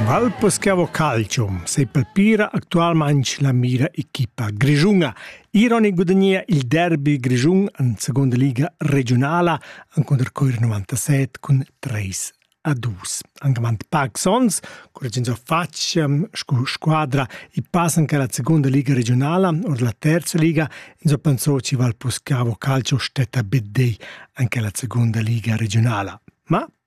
Valpes che avo calcium sepalpira actualmaing la mira equipa grischuna. Iron gudagnia il derby grischun in seconda liga regiunala encunter Coir 97 cun 3 a 2. Anche man pac sons, correggendo faccia ehm, scu squadra i passan che la seconda liga regionala or la terza liga in so pensò ci val poscavo calcio stetta bedei anche la seconda liga regionala. Ma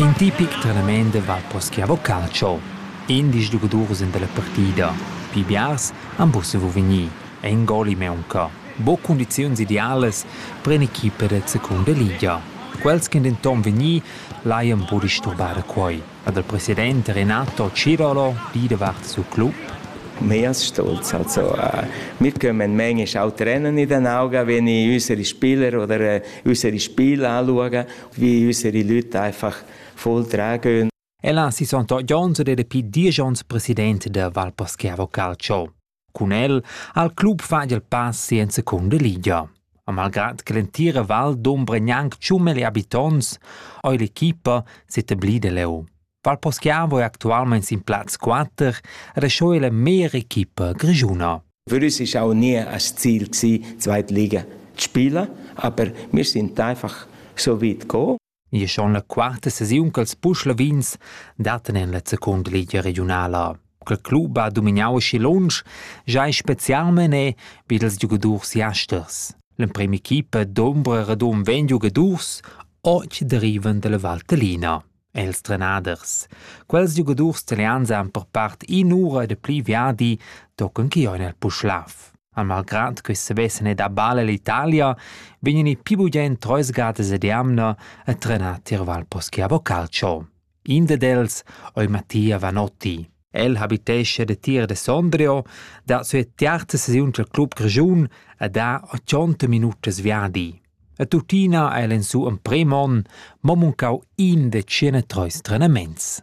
In tipic trenament va poschià vo calcio. Indisch giugadurs en dalla partida. Pli biars han buca saviu vegnir. In goli maunca. Buca cundiziuns idealas per in'equipa da secunda liga. Quels ch'ein denton vegni laian buca disturbare quei. ha dal president Renato Cirolo gì davart siu club. Mias stolz also äh, wir kommen manchmal auch trennen in den Augen, wenn ich unsere Spieler oder äh, unsere Spiele anschaue, wie unsere Leute einfach voll tragen gehen. E là si sono jones ed è più dieci onns presidente della Valposchiavo Calcio. Cun el ha il club fatg il pass en secunda ligia. E malgrad che l'entira val dombra gnanc tschun meli habitonts, ha l'equipa s'etablida leu. Val Poschiavo è actualmein sin plaz 4 e sco la mera equipa grischuna. Würdest ich auch nie als Ziel gewesen, zweite Liga zu spielen, aber wir sind einfach so weit gekommen. Gie schon la quarta sesiun ch'els buc lavins dattan en la secunda ligia regiunala. Quel club ha dominau aschi lunsch, giai specialmein è vid ils giugadurs jasters. L'emprema equipa d'ombra radun vegn giugadurs oggi derivan dalla Valtellina. Els trenaders. Quels giugadurs italians han per part in ura de pli viadi tochen che ein el Puschlav. Ma malgrad che sevessen ed abala l'Italia, vegnan i pli bugen treis gadas ed jamna a trenar tier Valposchiavo Calcio. In dad els ei Mattia Vanotti. El habitesce de Tir de Sondrio, da sua tiarta sesiun dal club Grischun e da 80 minutas viadi. A tuttina ha el en su emprem on mo muncau in de 103 trenaments.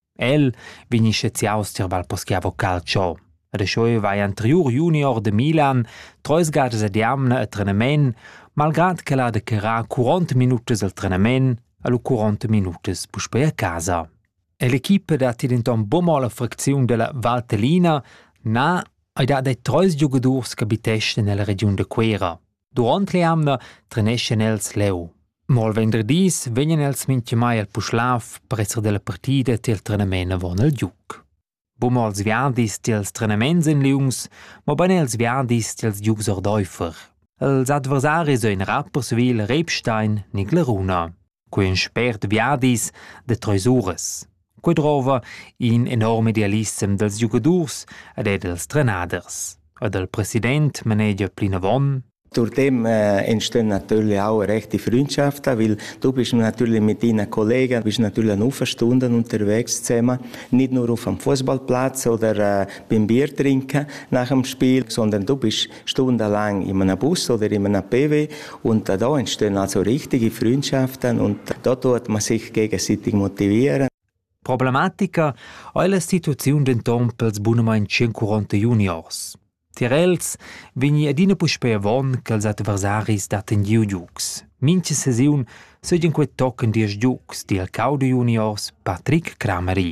El vegni sceziaus tier Val Poschiavo Calcio. Rescheu vai anteriur junior de Milan, treis gadas ad jamna a trenamen, malgrad che ha de carrar 40 minutas al trenamen a lu 40 minutas puspei a casa. E l'equipa dat denton buca la fracziun della Valtellina, na, ei dat ei treis giugadurs che habiteschan nella regiun de Cuera. Duront l'eamna treneschan els leu. Mo il venderdis vegnan els mintgamai al Puschlav per esser dalla partida tiel trenament avon il giuc. Buma els viadis tiels trenaments en liungs, mobein els viadis tiels giugs ordeifer. Els adversaris ein era persuil Rebstein ni Gleruna. quei ün spert viadis da treis uras. Quei drova in enorm idealissem dals giugadurs ed er dals trenaders. E dal president manegia plinavon Durch dem äh, entstehen natürlich auch rechte Freundschaften, weil du bist natürlich mit deinen Kollegen, bist natürlich eine Stunden unterwegs zusammen, nicht nur auf dem Fußballplatz oder äh, beim Bier trinken nach dem Spiel, sondern du bist Stunde lang in einem Bus oder in einem PW und da entstehen also richtige Freundschaften und da tut man sich gegenseitig motivieren. Problematica ha l'instituziun denton pels bunamain 140 juniors. Tier els vegni adina puspei avon ch'els adversaris datten giu giugs. Mincha sesiun seigien quei tochen diesch giugs, di el cau de juniors Patrick Crameri.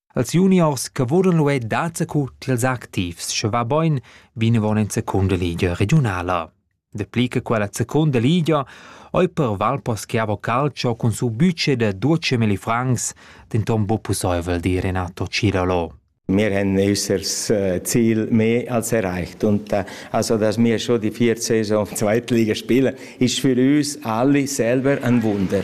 Als juniors che vulan luer dazacu ch'els activs, sche va boin vinavon en secunda ligia regiunala. Dapli che quella secunda ligia ei per Valposchiavo Calcio cun su budget da 12.000 francs denton buc pusseivel, di Renato Cilolo. Wir haben unser Ziel mehr als erreicht und also, dass wir schon die vier Saison Zweitliga spielen, ist für uns alle selber ein Wunder.